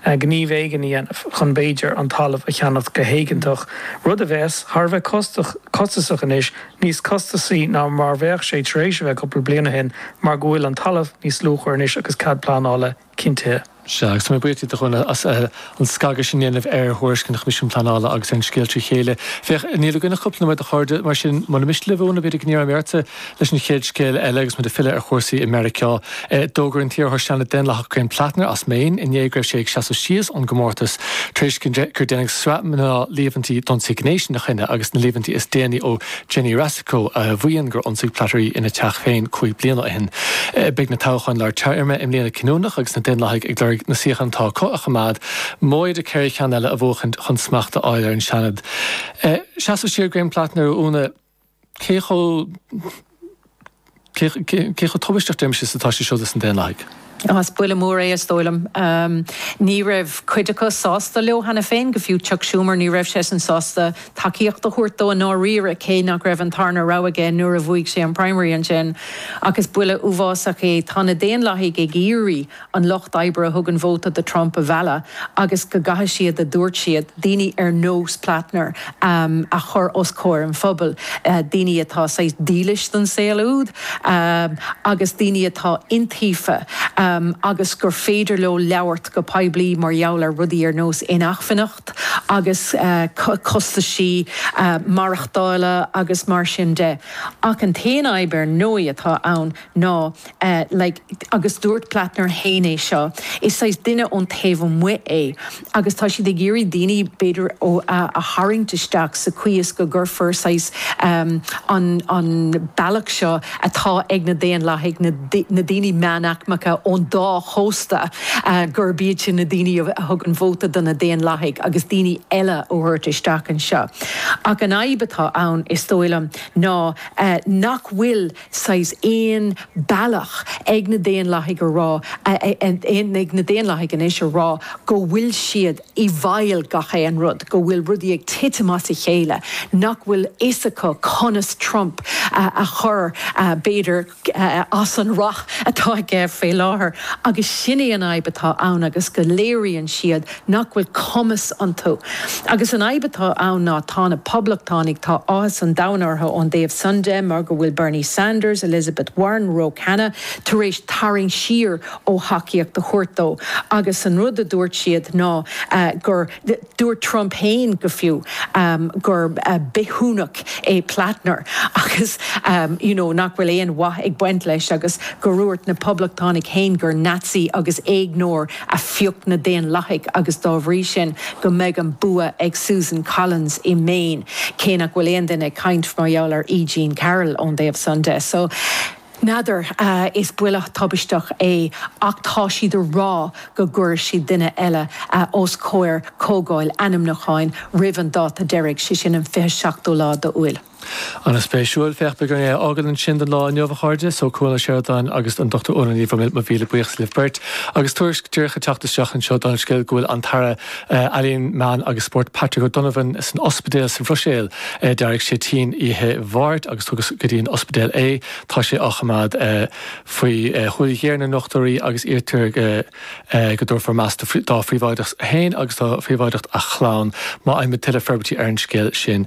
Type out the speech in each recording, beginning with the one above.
gníomh éigin a dhéanamh chun, b'fhéidir, an talamh a cheannacht go héigeantach, rud a bheadh thar a bheith costasach anois, níos costasaí ná mar bheadh sé tar éis a bheith cúpla bliain ó shin mar go bhfuil an talamh níos luachmhaire anois agus cead pleanála cinntithe. Sea, agus tá mé buíoch díot, a Dhuinnín, as an scagadh sin a dhéanamh ar thuairisc an Choimisiúin Pleanála agus ar an scéal trí chéile. Féach, níl againn ach cúpla nóiméad, a chairde, mar sin, mura miste libh, Úna, b'fhéidir go n-iarrfaidh mé ortsa, Leis an chéad scéal eile, agus muid ag filleadh ar chúrsaí i Meiriceá, d'fhógair an t-iarrthóir Seanaid Daonlathach Graham Platner as Maine inné go raibh sé ag seasamh síos ón gcomórtas tar éis gur déanadh sraith nua líomhaintí d'ionsaí gnéis ina choinne agus na líomhaintí is déanaí ó Jenny Racicot a mhaíonn gur ionsaigh Platner í ina teach féin cúig bliana ó shin. Beidh na toghcháin lár téarma i mbliana cinniúnach agus na Daonlathaigh ag lorg na suíochán atá acu a choimeád, móide ceithre cheann eile a bhuachaint chun smacht a fháil ar an Seanad. Seasamh siar Graham Platner, a Úna. cé chomh. cé chomh tubaisteach de mheas atá sé siúd dos na Daonlathaigh. Is buille mór é is dóigh liom. Ní raibh cuid acu sásta leis cheana féin, go fiú Chuck Schumer, ní raibh seisean sásta tacaíocht a thabhairt dó i ndáiríre, cé nach raibh an tarna rogha aige nuair a bhuaigh sé an primary ansin. Ach is buille uafásach é, tá na Daonlathaigh ag iarraidh an lucht oibre a thugann vóta do Trump a mhealladh agus go gcaithfidh siad, a dúirt siad, daoine ar nós Platner a chur os comhair an phobail, daoine atá saghas dílis don saol úd agus daoine atá iontaofa agus gur féidir leo labhairt go poiblí mar gheall ar rudaí ar nós inacmhainneacht agus costaisí maireachtála agus mar sin de. Ach an t-aon fhadhb ar ndóigh atá ann ná like agus dúirt Platner féin é seo, is saghas duine ón taobh amuigh é agus tá siad ag iarraidh daoine b'fhéidir a tharraingt isteach sa chaoi is go gcuirfear saghas ehm an an bealach seo atá ag na Daonlathaigh na na daoine meánaicmeacha ón dá chósta gurb iad sin na daoine a a thugann vóta do na Daonlathaigh agus daoine eile a thabhairt isteach anseo ach an fhadhb atá ann is dóigh liom ná nach bhfuil saghas aon bealach ag na Daonlathaigh a rá, ag na Daonlathaigh anois a rá go bhfuil siad i bhfeighil gach aon rud, go bhfuil rudaí ag titim as a chéile, nach bhfuil fhios acu conas Trump a chur, b'fhéidir, as an rath atá aige faoi láthair. Agus sin é an fhadhb atá ann agus go léiríonn siad, nach bhfuil cumas iontu. Agus an fhadhb atá ann ná tá na Poblachtánaigh, tá áthas an domhain orthu ón dtaobh san de mar go bhfuil Bernie Sanders, Elizabeth Warren, Ro Khanna tar éis tarraingt siar ó thacaíocht a thabhairt dó agus an rud a dúirt siad ná gur, dúirt Trump féin go fiú, gur bithiúnach é Platner agus you know nach bhfuil aon mhaith ag baint leis agus gur dhúirt na Poblachtánaigh féin gur Nazi agus éigneoir a phioc na Daonlathaigh agus dá bhrí sin go mbeidh an bua ag Susan Collins i Maine, cé nach bhfuil aon duine ag caint mar gheall ar E. Jean Carroll ón dtaobh san de. So, n'fheadar, is buille tubaisteach é ach tá siad a rá go gcuirfidh siad duine eile os comhair comhdháil ainmniúcháin roimh an dáta deiridh, sé sin an 27ú lá d'Iúil. An-spéisiúil. Féach, beidh orainn é a fhágáil ansin don lá inniu, a chairde. So, Cuan Ó Seireadáin agus an Dr Órla Ní Bhroiméil, mo mhíle buíochas libh beirt. Agus tuairisc díreach ag teacht isteach anseo don scéal go bhfuil an tAire Ealaíon, Meán agus Spóirt, Patrick O'Donovan, san ospidéal sa Bhruiséil. D'éirigh sé tinn oíche Mháirt agus tugadh go dtí an ospidéal é. Tá sé á choimeád faoi shúil ghéar na ndochtúirí agus iarrtar go dtabharfaí meas dá phríobháideacht féin agus do phríobháideacht a chlann. Má fhaighimid tuilleadh forbairtí ar an scéal sin,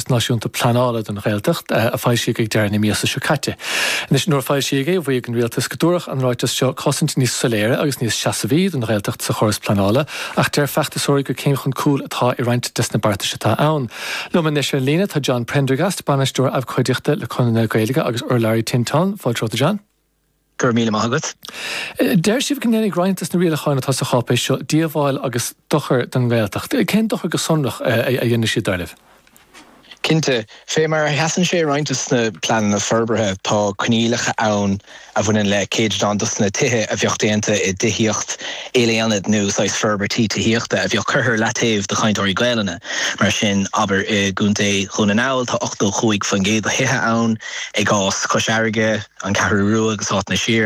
Náisiúnta Pleanála don Ghaeltacht a foilsíodh ag deireadh na míosa seo caite. Anois, nuair a foilsíodh é, mhaígh an Rialtas go dtabharfadh an ráiteas seo cosaint níos soiléire agus níos seasmhaí don Ghaeltacht sa chóras pleanála ach deir feachtasóirí gur céim chun cúil atá i roinnt des na beartais atá ann. Liom anois ar líne tá John Prendergast, Bainisteoir Abhcóideachta le Conradh na Gaeilge agus urlabhraí Tinteáin. Fáilte romhat, a John. Go raibh míle maith agat. Deireann sibh go ndéanfaidh roinnt des na rialacháin atá sa cháipéis seo díobháil agus dochar don nGaeltacht. Cén dochar go sonrach a dhéanfaidh siad, dar libh? Cinnte, fé mar a sheasann sé i roinnt des na pleananna forbartha, tá coinníollacha ann a bhaineann le céatadán des na tithe a bheadh déanta i dtithíocht ilaonad nó saghas forbairt tithíochta a bheadh curtha ar leataobh do chainteoirí Gaelainne. Mar sin, abair, i gContae Dhún na nGall, tá 85% do thithe ann, i gcás Chois Fharraige, An Cheathrú Rua agus áiteanna siar.